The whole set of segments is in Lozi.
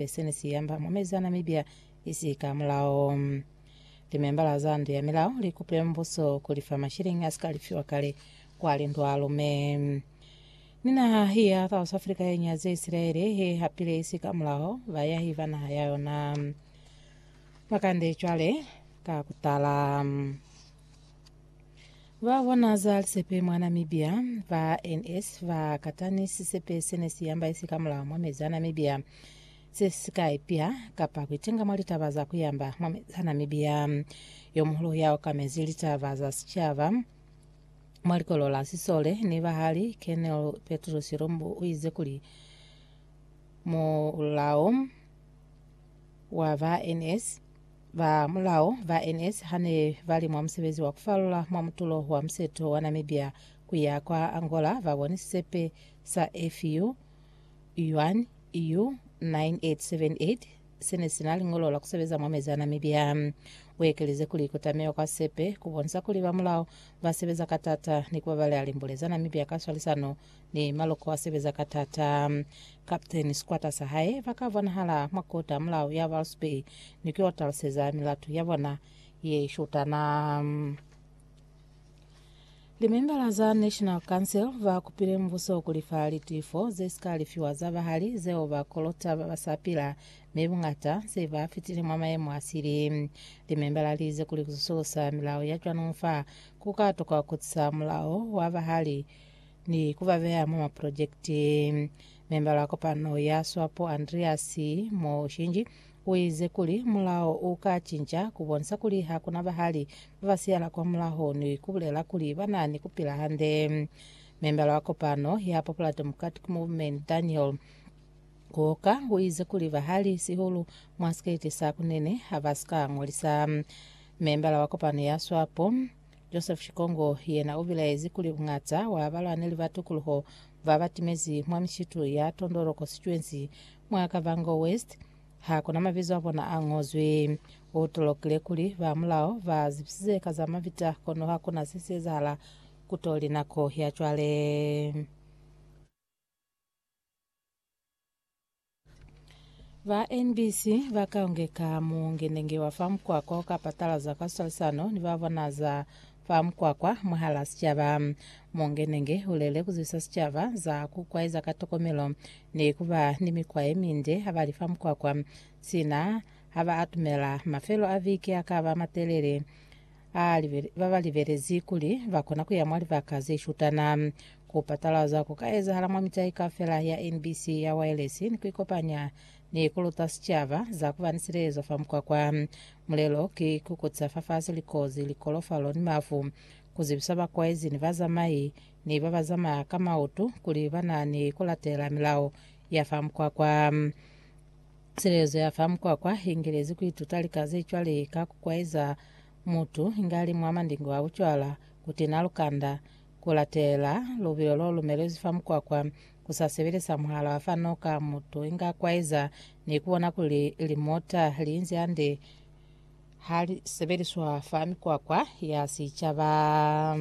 Hape sene si amba mwa mezana mibya isi ka mulao. Limembala za ndu ya milao li kupile mubuso ku li fa mashilingi a si ka lifiwa kale kwa lindu a lume. Ni naha ya South Africa ye nyaze Isilaele ye hapile isi ka mulao bayahi ba naha ya yona. Makande cwale ka kutala. Ba bona za lisepe mwa Namibia, ba NS ba kata ni sisepe se ne si yamba isi ka mulaho mwa mezi a Namibia se si ka ipya kapa ku itinga mwa litaba za ku yamba mwa mezi a Namibia. Yo muhulu ya okamezi litaba za sicaba mwa likolo la Sisole ni Bahali, Colonel Petrus Lumbu u ize kuli, Mulao wa ba NS, Ba mulao ba NS ha ne ba li mwa musebezi wa ku falula mwa mutulo wa museto wa Namibia ku ya kwa Angola ba boni sisepe sa FU Yuan U 9878 se ne si na liñolo la ku sebeza mwa mezi a Namibia. U ekeleze kuli ku tamiwa kwa sisepe ku bonisa kuli ba mulao ba sebeza ka t'ata ni ku babaleha limbule za Namibia ka swalisano Ne Maloko a sebeza ka tata. Captain, sikwata sa hae, ba ka bonahala mwa kota mulao ya Walvis Bay ni k'o taluseza milatu ya bona ye shutana. Limembala za National Council ba kupile mubuso kuli fa litifo ze si ka lifiwa za bahali zeo ba kolota ba ba sa pila mi buñata se ba fitile mwa mayemo a sili. Limembala li ize kuli ku susulusa milao ya cwano fa ku ka tokwa ku tisa mulao wa bahali ni ku ba beya mwa mapulojekiti. Membala wa kopano ya Swapo Andreas Mushinji uize kuli mulao u ka cinca ku bonisa kuli ha ku na bahali ba ba siyala kwamulaho ni ku bulela kuli ba na ni ku pila hande. Membala wa kopano ya Popular Democratic Movement Daniel Kooka uize kuli bahali, sihulu mwa sikete sa kunene, ha ba si ka ngolisa. Membala wa kopano ya Swapo, Joseph Shikongo yena ubilaezi kuli buñata wa balwaneli ba tukuluho ba batimezi mwa mishitu ya Tondolo Constituency mwa Kavango West ha kuna mabizo a bona a ngozwi. U tolokile kuli ba mulao ba zibisize ka za mabita kono ha kuna se si ezahala kutoli nako ya cwale. Ba NBC ba ka ungeka muungenenge wa fa mukwakwa o ka patalaza ka swalisano ni ba bona za fa mukwakwa mwahala sicaba. Muungenenge u lele ku zwisa sicaba za ku kwaeza ka tokomelo ni ku ba ni mikwa ye minde ha ba li fa mukwakwa, sina ha ba atumela mafelo a viki a ka ba matelele. Babalibelezi kuli bakona kuya mwa libaka zeshutana, kupatalaza kuka ezahala mwa mitai kaufela ya NBC ya waelesi ni kuikopanya ni kuluta sicaba za kuba ni silezo fa mukwakwa. Mulelo ki kukutisa fafasi likozi, likolofalo ni mafu, kuzibisa bakwaezi ni bazamai ni babazamaya ka mautu kuli banani kulatela milao ya fa mukwakwa. Silelezo ya fa mukwakwa i ngelezi ku ituta lika ze cwale ka ku kwaeza mutu inge a li mwa mandingo a bucwala, ku tina lukanda, ku latela lubilo lo lumelezwi fa mukwakwa, ku sa sebeleza muhala wa fa noka mutu inge a kwaeza, ni ku bona kuli limota li inzi hande ha li sebeliswa fa mikwakwa ya sicaba.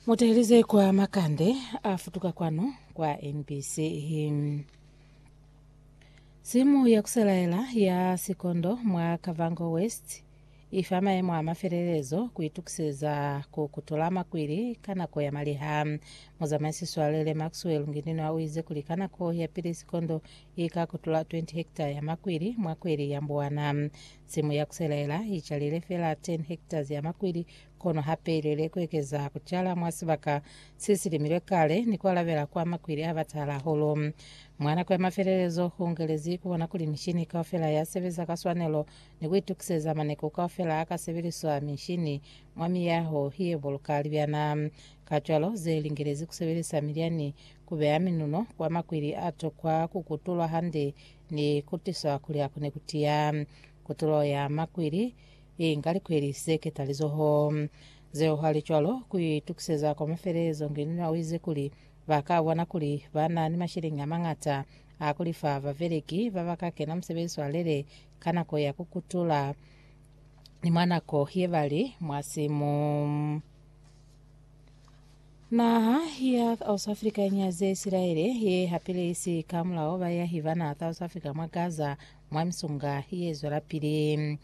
Mutahelize kwa makande a futuka kwanu kwa NBC. Simu ya kuselaela ya sikondo mwa Kavango West ifa maemo a mafelelezo kuitukiseza ku kutula makwili ka nako ya maliha. Muzamaisi Swalele Maxwell Ngininwa uize kuli ka nako ya pili sikondo ika kutula 20 hekta ya makwili mwa kweli ya Mbuwana. Simu ya kuselaela icalile fela 10 hektas ya makwili Kono hape ilwele kuekeza kucala mwa sibaka sesilimilwe kale ni kualabela kwa makwili abatahala hahulu. Mwa nako ya mafelelezo, huungelezi kubona kuli mishini kaufela yasebeza ka swanelo ni kuitukiseza maneku kaufela akasebeliswa mishini mwa miyaho yebuluka libyana. Kacwalo, zelingelezi kusebelisa milyani kubeya minuno kwa makwili atokwa kukutulwa hande ni kutiswa kuli akone kutiya. Kutulo ya makwili Inga likweli ze ketalizoho zeo halicwalo ku itukiseza kwa mafelelezo. Nginina u ize kuli, Ba ka bona kuli ba na ni masheleñi a mañata a ku lifa babeleki ba ba ka kena musebezi wa lele ka nako ya ku kutula ni mwa nako ye ba li mwa simu. Naha ya South Africa i nyaze Isilaele, ye hapile isi ka mulao bayahi bana South Africa mwa Gaza Mwa misunga ye zwelapili,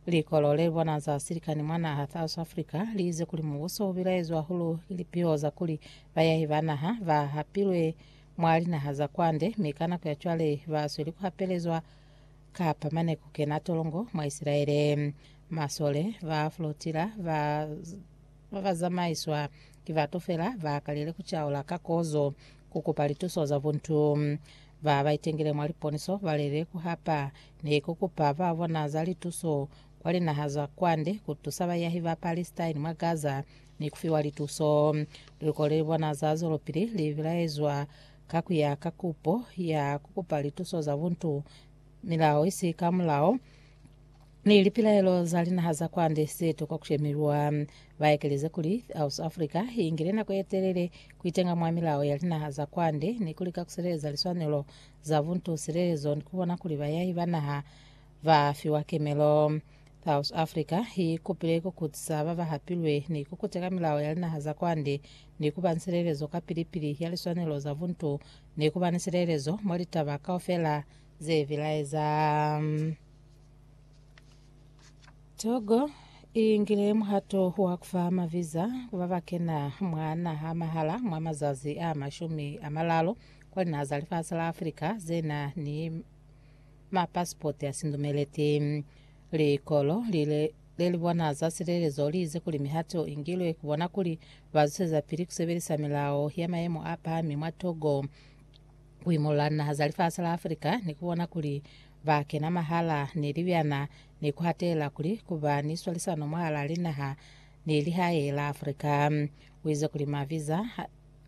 likolo le bona za silikani mwa naha South Africa li ize kuli mubuso u bilaezwa hulu ki lipiho za kuli bayahi ba naha ba hapilwe mwa linaha za kwande, mi ka nako ya cwale ba sweli ku hapelezwa kapa mane ku kena tolongo mwa Isilaele. Masole ba flotilla ba Ba ba zamaiswa ki batu fela ba kalile ku caula ka kozo ku kupa lituso za buntu. Ba ba itengile mwa liponiso ba lele ku hapa ni ku kupa ba bona za lituso kwa linaha za kwande ku tusa bayahi ba Palestine mwa Gaza ni ku fiwa lituso. Liluko le li bona za zwelopili li bilaezwa ka ku ya ka kupo ya ku kupa lituso za buntu, milao isi ka mulao. Ni lipilaelo za linaha za kwande ze tokwa ku shemelwa. Ba ekeleze kuli, South Africa i ingile nako ye telele ku itenga mwa milao ya linaha za kwande ni ku lika ku sileleza liswanelo za buntu, silelezo ni ku bona kuli bayahi ba naha ba fiwa kemelo. South Africa i ikupile ku kutisa ba ba hapilwe ni ku kuteka milao ya linaha za kwande ni ku ba ni silelezo ka pili-pili ya liswanelo za buntu ni ku ba ni silelezo mwa litaba kaufela ze bilaeza. Togo i ngile muhato wa kufa maviza ku ba ba kena mwa naha mahala mwa mazazi a mashumi a malalo kwa linaha za lifasi la Afrika ze na ni mapasipoti a sindumeleti. Likolo lile le li bona za silelezo li ize kuli mihato i ngilwe ku bona kuli ba zuseza pili ku sebelisa milao ya mayemo a pahami mwa Togo ku imolola linaha za lifasi la Afrika ni ku bona kuli Ba kena mwahala ni libyana ni ku hatela kuli ku ba ni swalisano mwahala linaha ni lihae la Africa. U ize kuli maviza,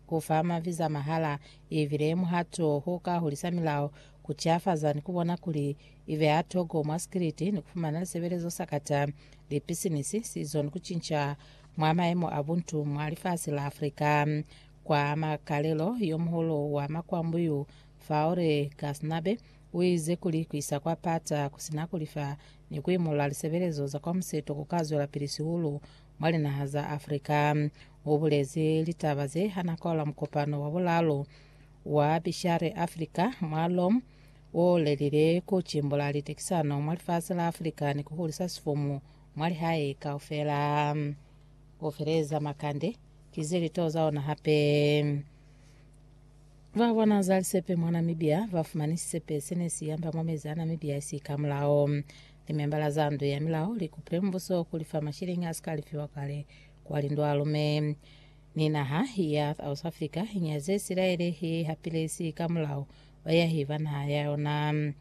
ku fa maviza mahala i bile muhato o ka hulisa milao, ku tiafaza ni ku bona kuli i beha toko mwa sikiliti ni ku fumana lisebelezo sakata, lipisinisi, sizo ni ku cinca mwa mayemo a buntu mwa lifasi la Africa. Kwa makalelo, yo muhulu wa makwambu yu, Faure Ghaznabe, Uize kuli kuisa kwa pata kusina kulifa ni kuimulula lisebelezo za kwa museto kukazwelapili sihulu mwa linaha za Africa. Ubulezi litaba ze hana kwaula mukopano wa bulaalu wa Bishare Africa mwa Rome oulelile kucimbula litekisano mwa lifasi la Africa ni kuhulisa sifumu mwa lihae kaufela. Kufeleza makande kize litoza ona hape. Ba kwa Nazali Sepe mwa Namibia ba fumani sisepe se ne si yamba mwa mezi a Namibia si ka mulao. Limembala za ndu ya milao li kupile mubuso ku li fa masheleñi a si ka lifiwa kale kwa lindwalume. Ni naha ya South Africa i nyaze Isilaele ye i hapile si ka mulao bayahi ba naha ya yona.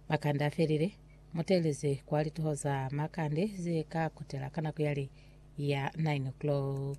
Makande a felile, mu teeleze kwa litoho za makande ze ka kutela ka nako ya li ya 9 o'clock.